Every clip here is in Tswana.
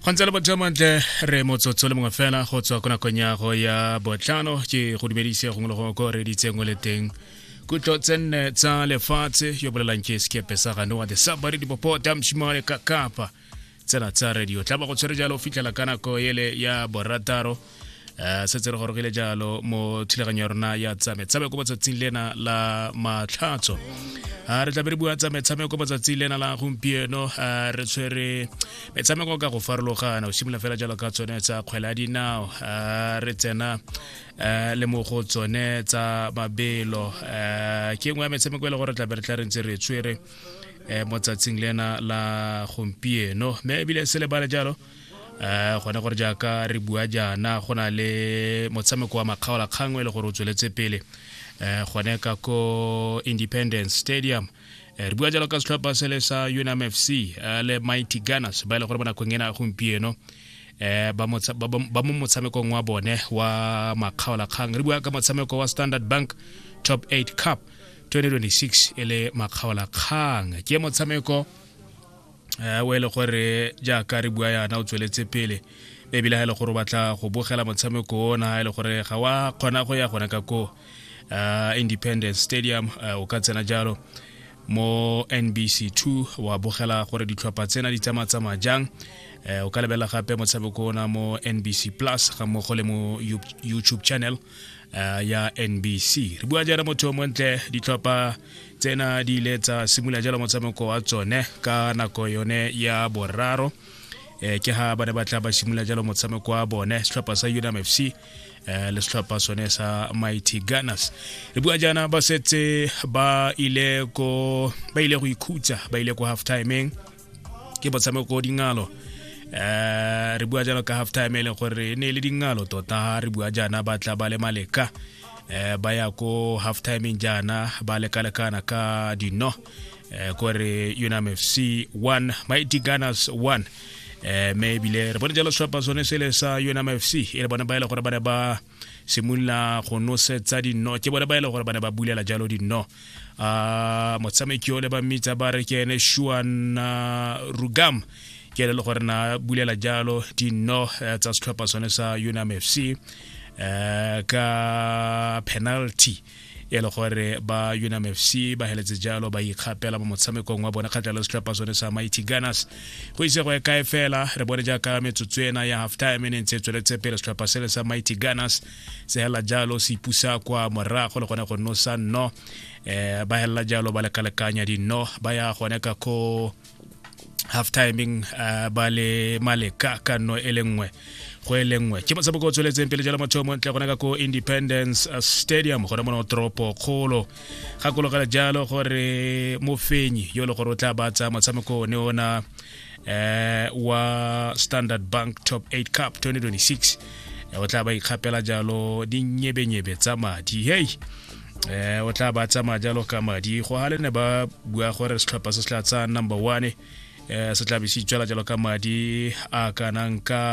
go ntse le bojamantle re motsotso le mongwe fela go tswa ko nakong ya go ya botlhano ke go dumedise gongwe le gongwe ko re ditseng o le teng kutlo tse nne tsa lefatshe yo bolelang ke sekepe sa ganoa the sabari dipopota mshimale ka kapa tsena tsa radio tla ba go tshwere jalo o fitlhela ka nako ele ya borataro um se tse re gorogile jalo mo thulaganyo ya rona ya tsametsame ko matsatsing lena la matlhatso a re tlabe re bua tsa metshameko matsatsi lena la gompieno a re tshwere metshameko ka go farologana o simolola fela jalo ka tsone tsa kgwele ya dinao a re tsena le mo go tsone tsa mabelo ke nngwe ya metshameko e le gore tlabe re tla re ntse re tshwere mo tsatsing lena la gompieno mme ebile se lebale jalo um gone gore jaaka re bua jaana go na le motshameko wa makgaolakgang e le gore o tsweletse pele um gone ka ko independence stadium Eh, re bua jalo ka setlhopha se le sa unam fc eh, le mighty gunners ba e le gore mo nakong ena gompieno eh, um ba mo motshamekong wa bone wa makgaolakgang re bua ka motshameko wa standard bank top 8 cup 2026 e le makgaolakgang ke motshameko eh, o e le gore jaaka re bua yana o tsweletse pele ebile ga e le gore o batla go bogela motshameko ona e le gore ga wa kgona go ya gone ka ko uh, independence stadium uh, o ka tsena jalo mo nbc 2 wa bogela gore ditlhopha tsena di tsamatsamaya jang eh, o ka lebelela gape motshameko ona mo nbc plus ga mmogo le mo youtube channel uh, ya nbc re bua jaana motho yo montle ditlhopha tsena di ile tsa simolola jalo motshameko wa tsone ka nako yone ya boraro eh, ke ha ba ne ba tla ba simolola jalo motshameko wa bone setlhopha sa unam f c eh, le setlhopha sone sa mighty gunners re bua jaana ba setse ba ile go ikhutsa ba ile ko half timeng ke motshameko dingalo eh re bua jalo ka half time e leng gore e ne e le dingalo tota re bua jaana ba tla ba le maleka eh ba ya ko half timeng jaana ba lekalekana ka dino eh kore unam fc 1 mighty gunners 1 eh me ebile re bone jalo seapa sone sele sa unam fc e le bone ba e le gore ba ne ba simolola go nosetsa dino ke bone ba e le gore ba ne ba bulela jalo dino a motshameki o le ba mmitsa ba re ke ene shuan rugam ke ele le gore na bulela jalo dino eh, tsa setlhopha sone sa unam fc um eh, ka penalty e le gore ba unam fc ba heletse jalo ba ikgapela mo motshamekong wa bone kgatlha le setlhopha sone sa mighty gunners go ise go e kae fela re bone jaaka metsotso ena ya half time e ne ntse e tsweletse pele setlhopha sele sa mighty gunners se hela jalo se ipusa kwa morago le gone go nosa nno um ba helela jalo ba lekalekanya dinno ba ya gone ka ko half timing uh, ba le maleka ka nno e le nngwe go e le nngwe ke motshameko o tsweletseng pele jalo motho mo ntle gona ka ko independence uh, stadium gona mono toropo kgolo gakologela jalo gore mofenyi yo e le gore o tla batsa motshameko one ona eh wa standard bank top 8 cup 2026 o tla ba ikgapela jalo dinyebenyebe tsa madi hei eh o tla ba tsamaya jalo ka madi go ga le ne ba bua gore setlhopha se se tla tsaya number one eh se tla be se itswela jalo ka madi a kanang ka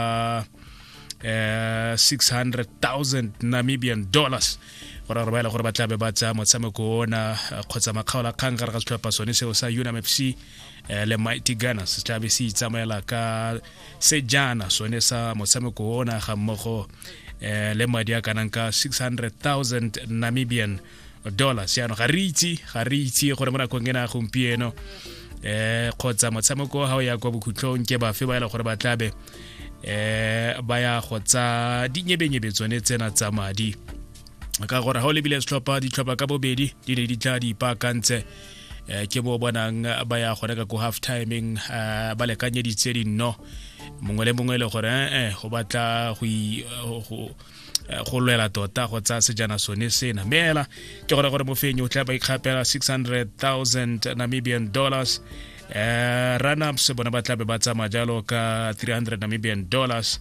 eh 600000 namibian dollars gore gore ba ele gore ba tlabe ba tsaya motshameko ona eh, kgotsa makgaola kgang gare ga setlhopha sone seo sa unamfc eh, le mighty gunners se tlabe se itsamaela ka sejana sone sa motshameko ona ga mmogo eh, le madi a kanang ka 600000 namibian dollars yaanong ga re itse ga re itse gore mo nakong ena gompieno eh kgotsa motshameko ga o ya kwa bokhutlong ke bafe ba e leng gore ba tlabe eh ba ya go tsa dinyebenyebe tsone tsena tsa madi ka gore ga o lebile setlhopha ditlhopha ka bobedi di ne di tla di ipaakantse eh, ke bo bonang ba ya go reka ko half timing eh, ba lekanyeditse dinno mongwe le mongwe e le gore ee eh, go batla go lwela tota go tsaya sejana sone sena mme ela ke gore gore mofenyi o tla ba ikgapela 600000 namibian dollars uh, eh, runups bona ba tlabe ba tsamaya jalo ka 300 namibian dollars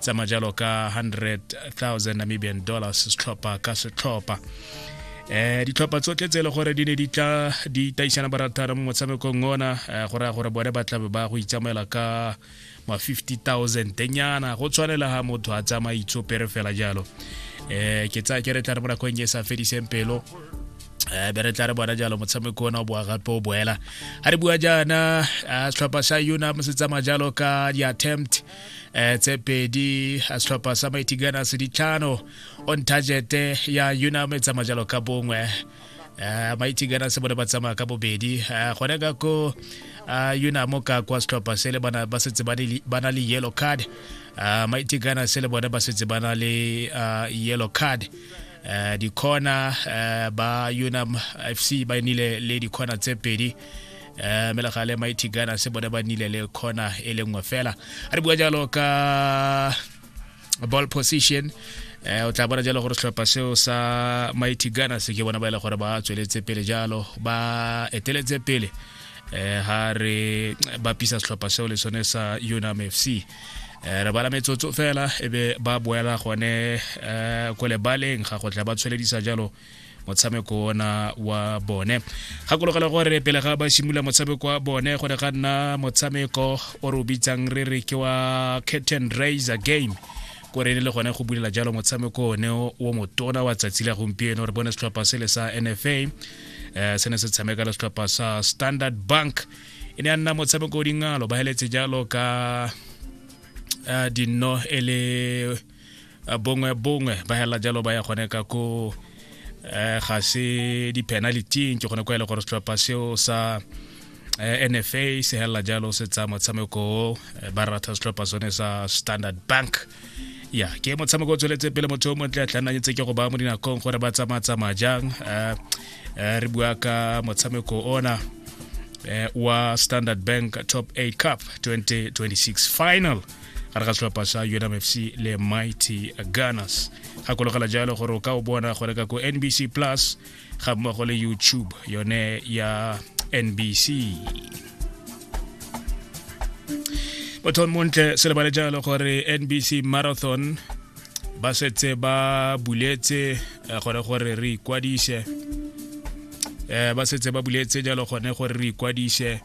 tsamaya jalo ka 100,000 namibian dollars setlhopha ka setlhopha eh ditlhopha tsotlhe tse e le gore di ne di tla di taisana barataro mo motshamekong ona eh, go raya gore bone ba tlabe ba go itsamaela ka ma 50000 tenyana go tshwanela ga motho a tsamaya itsopere fela jalo eh ke tsaya ke re tla re mo nakong e sa fediseng pelo Eh, be re tla re bona jalo motshameko ona o boa gape o boela ga re bua jaana eh, setlhopha sa unam se tsamaya jalo ka di-attempt eh tse pedi a setlhopha sa mighty gunners ditlhano on target ya unam e tsamaya jalo ka bongwe uh, mighty gunners bone ba tsamaya ka bobedi uh, gone ka ko uh, unam ka kwa setlhopha se le bana ba setse ba na le yellow card uh, mighty gunners le bone ba setse ba na le uh, yellow card uh, dikona uh, ba unam fc ba nile le dikona tse pedi eh mele ga le mighty gana se bone ba nile le khona e le nngwe fela a re bua jalo ka ball position eh o tla bona jalo gore setlhopha seo sa mighty gana se ke bona ba ile e gore ba tsweletse pele jalo ba eteletse pele eh ha re bapisa setlhopha seo le sone sa unam fc Eh, re bala metsotso fela e be ba boela gone um ko lebaleng ga go tla ba tshweledisa jalo motshameko ona wa bone gakologela gore pele ga ba simolola motshameko wa bone go ne ga nna motshameko o re o bitsang re re ke wa curtain raiser game ko re le gone go bulela jalo motshameko one o motona wa tsatsi la gompieno re bone setlhopha sele sa nfa um se ne se tshameka le setlhopha sa standard bank e ne ya nna motshameko o dingalo ba heletse jalo ka uh, dinno e le bongwe bongwe ba hela jalo ba ya gone ka ko eh, ga se di-penalityng ke gone kwa e le gore setlhopha seo sa eh, nfa se helela jalo se tsaya motshameko o eh, ba ratha setlhopha sone sa standard bank ya ke motshameko o tsweletse pele motho o montle a tlhananyetse ke go ba mo dinakong gore ba tsamaya-tsamaya jang eh, eh, re bua ka motshameko ona eh, wa standard bank top 8 cup 2026 final gare ga setlhopha sa unmfc le mighty gunners gakologela jalo gore o ka o bona go reka ko nbc plus ga mmogo le youtube yone ya nbc bothon montle se lebale jalo gore nbc marathon ba setse ba buletse eh, gore gore re ikwadise eh, ba setse ba buletse jalo gone gore re ikwadise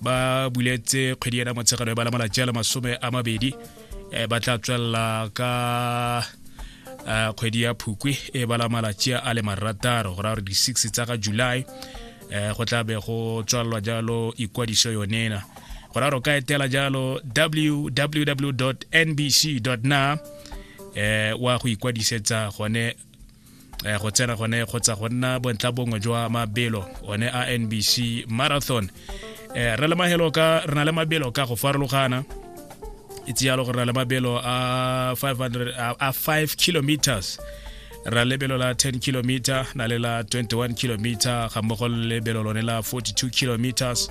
ba buletse kgwedi ena motshegano e ba lamola jalo masome a mabedi um ba tla tswelela ka um kgwedi ya phukwi e ba malatsi a le marataro go raya gore di-six tsa ga july um go tla be go tswalelwa jalo ikwadiso yonena go raya gore o ka etela jalo www nbc na um wa go ikwadisetsa gone eh, go tsena gone kgotsa go nna bontla bongwe jwa mabelo one a nbc marathon eh, re le mahelo ka re na le mabelo ka go farologana itse yalo gore re na le mabelo a 500 a 5 kilometers ra lebelo la 10 kilometer na le la 21 kilometer ga mmogo le lebelo lone la 42 kilometers